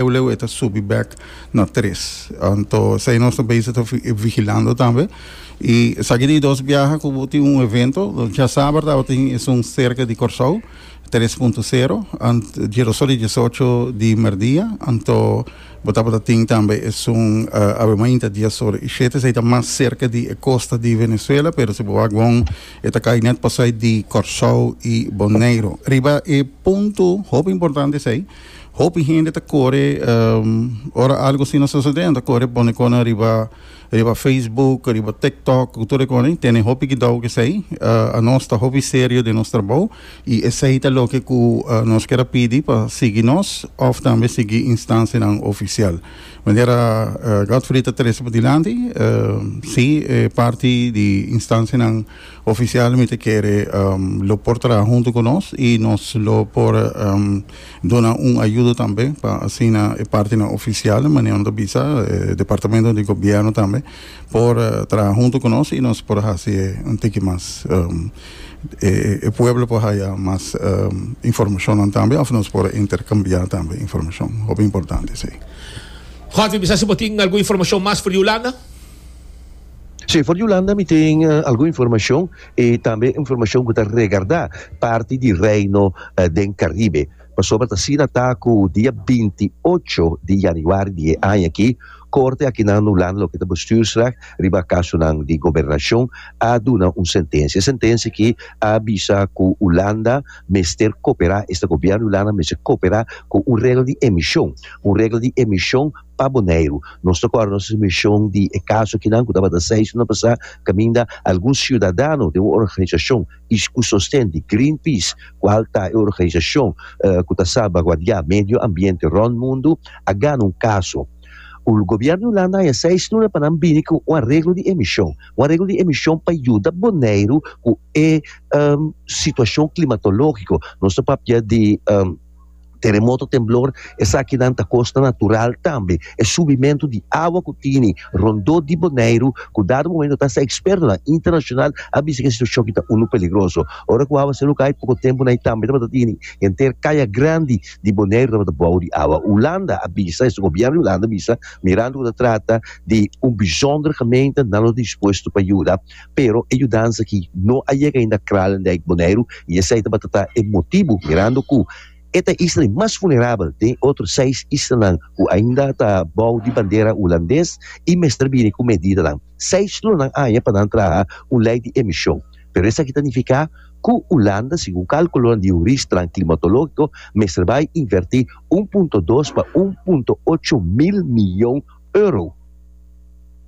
Eu leu e ta subi bek na tres. Anto esei nos ta bezig ta vigilando tambe. I esaki di dos biaha ku bo tin un evento. Djasaber tabatin esun serka di Kòrsou, tres punto sero, djeroso di diesocho di merdia. Anto bo tabata tin tambe esun awe mainta dies ora i shete. Esei ta mas serka di e kosta di Venezuela, pero si bo wak bon e ta kai nèt pasai di Kòrsou i Boneiru. Riba e punto hopi importante esei. Hopi hende ta kore ora algo asina a sosodendo ta kore pone konan riba riba facebook riba tiktok ku tur e konan i tene hopi kidau ku esei a nos ta hopi serio den nos trabou i esei ta loke ku nos ker a pidi pa sigui nos òf tambe sigui instansianan ofisial manera Godfrey ta trese padilanti si e parti di instansianan Ofisial mi ta kere lo por traha huntu ku nos i nos lo por duna un ayudo tambe pa asina e partinan ofisial manera no ta bisa departamento di gobièrnu tambe por traha huntu ku nos i nos por hasi e un tiki mas e pueblo por haya mas informashonnan tambe òf nos por interkambiá tambe informashon hopi importante esei. Jorge bisa si bo tin algun informashon mas for di Hulanda. Señor Yolanda mi tin algun informacion y tambe informacion cu ta regarda parti di Reino den Caribe. Pasobra ta asina ta cu dia binti ocho di Januari di e aña aki Corte akinan Nolanda loke ta Bestuursrecht riba casonan di Gobernacion a duna un sentencia. E sentencia aki a bisa cu Holanda mester coopera esta Gobierno di Holanda mester coopera cu un regla di emision, un regla di emision, Pa Boneiru, nos ta kòrda nos mishon di e kaso kinan ku tabata seis suma pasá kaminda algun siudadano den un organisashon ku sosten di Greenpeace, kual ta e organisashon ku ta salbaguardiá medio ambiente rònt mundu, a gana un kaso. Gobièrnu Hulanda a haña seis luna pa nan bini ku un areglo di emishon, un areglo di emishon pa yuda Boneiru ku e situashon klimatológiko. Nos ta papia di. Teremoto, temblor, esakinan ta kosnan natural tambe. E subimentu di awa ku tini rondó di Boneiru ku dado momentu ta hasta ekspertonan internashonal a bisa ku e situashon aki ta unu peligroso. Ora ku awa seduka hai poko tempunan ei tambe tabata tini henter kaya grandi di Boneiru tabata bou di awa. Hulanda a bisa esei gobièrnu di Hulanda a bisa mirando ku ta trata di un bishònder gemeente nan lo dispuesto pa yuda. Pero e yudansa aki no a yega ainda Krallen Dijk Boneiru y esey tabata ta e motibu mirando cu e ta isla di mas vulnerabel den e otro seis islanan cu ainda ta bou di bandera Hulandes y mester bini cu medidanan. Seis lonan aña pa nan traha un ley di emision. Pero esaki ta nifica cu Hulanda, segun calculonan di huristnan climatologico, mester bay inverti un punto dos pa un punto ocho mil miyon euro.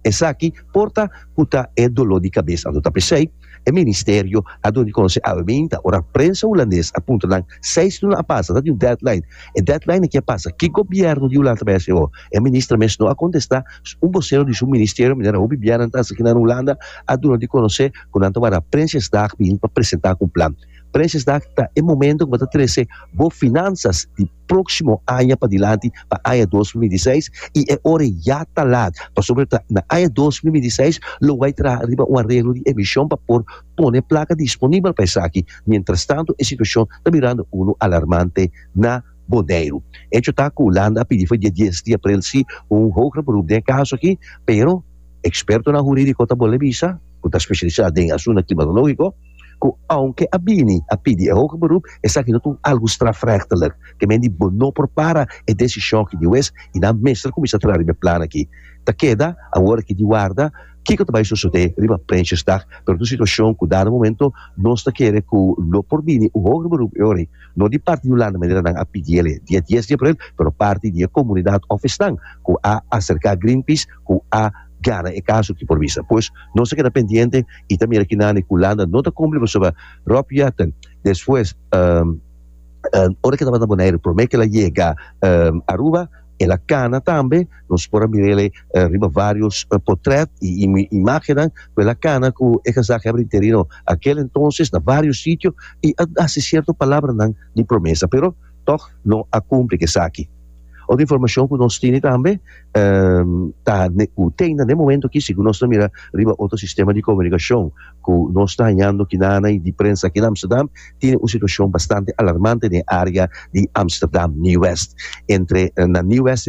Esaki por ta cu ta e dolor di cabes anto ta p'esey e Ministerio a duna di conoce awe binta, ora prensa Hulandes a puntra nan seis luna a pasa, ta tin un deadline, e deadline a kier pasa, ki Gobierno di Hulanda ta bay hasi awo? E Minister mes no a contesta un vocero di su Ministerio manera hopi bia nan ta hasi akinan Hulanda a duna di conoce cu nan ta wara Prinsjesdag bin pa presenta un plan. Prinsjesdag ta e momento cu bo ta trece bo finanzas di próksimo aña padilanti pa aña dos mil i di seis i e ora ya ta lat pasobra ta na aña dos mil i di seis lo wou a traha riba un areglo di emishon pa por pone plaka disponibel pa esaki. Mientrastantu e situashon ta birando unu alarmante na Boneiru. Hecho ta ku Hulanda a pidi for dia dies di aprel si un hoger beroep den e kaso akí pero ekspertonan hurídiko ta bol'e bisa ku ta speshalisá den asuntu klimatológiko, ku ounke a bini a pidi e hoge beroep, esaki no ta un algu strafrechtelijk. Ke men di bo no por para e desishon aki di wes i nan mester kuminsá traha riba e plan aki. Ta keda awor aki di warda kiko ta bai sosodé riba Prinsjesdag, pero ta un situashon ku dado momento nos ta kere ku lo por bini un hoger beroep e ora ei, no di parti di Hulanda manera nan a pidi el e dia dies di aprel, pero parti di e komunidat òf esnan ku a aserká Greenpeace ku a Gana e kaso aki por bisa. Pues nos ta keda pendiente y ta mira kinan e Kulanda no ta kumpli pasobra Rob Jetten despues ora ke tabata na Boneiru prome ke el a yega Aruba el a kana tambe nos por a mira el riba varios potret y imagennan cu el a kana cu e gezaghebber interino akel entonces na varios sitio y a hasi cierto palabranan di promesa pero Tòg no a kumpli ku esaki. Otro informashon ku nos tene tambe ta ku te na den momento aki si ku nos ta mira riba otro sistema di komunikashon ku nos ta hañando kinana i di prensa aki na Amsterdam tene un situashon bastante alarmante den área di Amsterdam Nieuw West entre na Nieuw West.